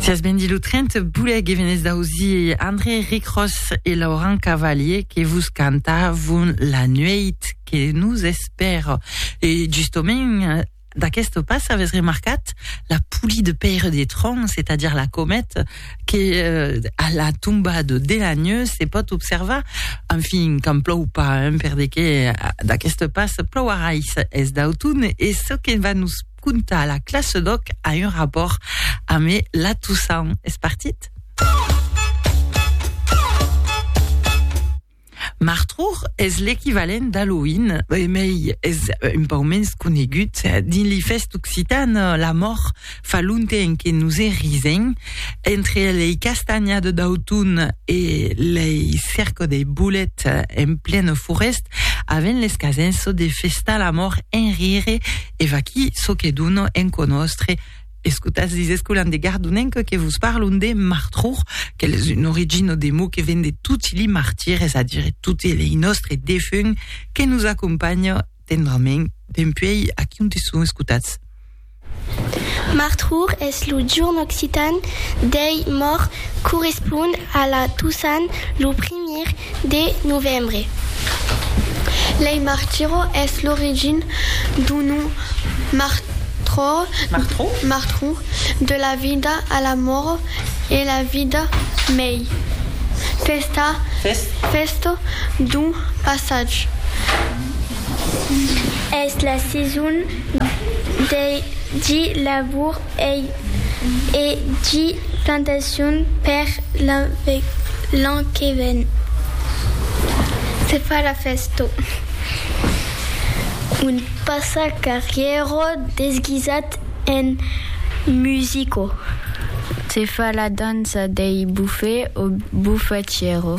Sias ben dit lo 30 boulec e venez d'ausi André Ricros e Laurent Cavalier que vos cantavon la nueit que nous espère. E justament d'aquest pas avès remarcat la polie de Père des Troncs, c'est-à-dire la comète que euh, à la tombade de la nuit se pot observar. Enfin, quand plou pas, hein, per de que d'aquest pas plouarà es d'automne e ce que va nous contar la classe d'òc a un rapòrt amé la Toussaint. Es partit? Martrour es l'equivalent d'Halloween, emei es un pau mens conegut. Dins li fèst occitan, la mòr fa lonten que nos e risen. Entre lei castanha de d'auton e lei cerco dei bolet en plena forèst, avèn les casens çò de festar la mòr en rire, E vaquí çò que dono en conòstre, escotatz dins Escolan de Gardonenc que vos parlon de martror, qu'el es un origino de mot que ven de toti li martires, es a dire toti lei nòstre defunt que nos acompanhan tendrament dempuèi aquí onte son, escotatz. Martror es lo jorn occitan dei mòrts, correspond a la Tosan, lo primièr de novembre. Lei Martiro es l'origin d'un nom Martro, de la vida a la mòro e la vida mei festa, fèsto d'un passatge. Es la saison dei di labour. Ei e gi plantacion per l'an que ven. Se fa la fèsto. Un passacarrièro desguisat en musico. Se fa la dança dei bufè o bufatièro.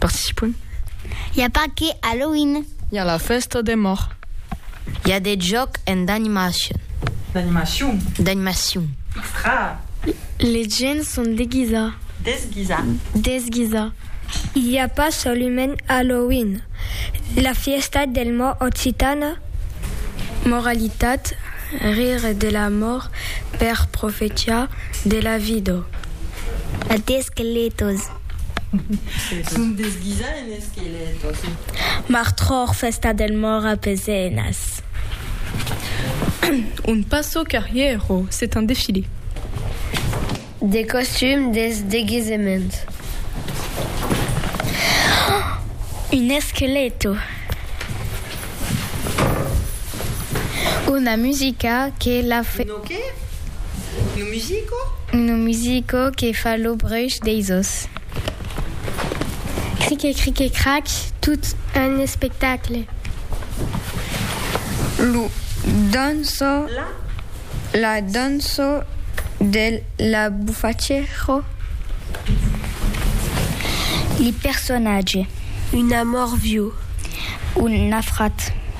Participon. I a Paque, Halloween. I a la fèsta de mòr. I a de jòc en d'animacion. D'animacion. D'animacion. Extra. Les gents son deguisats. Desguisats. Desguisar. I a pas solument Halloween. La fièsta del mòr occitana. Moralitat, rire de la mòr per profetiar de la vida. D'esqueletos. Son desguisat en esquelèt aussi. Martròr, fèsta del mòrt a Pezenas. Un passo carrièro, c'est un défilé. Des costumes, des deguisements. Un esqueleto. Una musica que la. Que? Lo musico? Lo musico que fa lo bruch deis os. Crique crique crac, tot un espectacle. Lo danço, la danço de la bufaccero. Li personatge. Un amor viu. Un nafrat.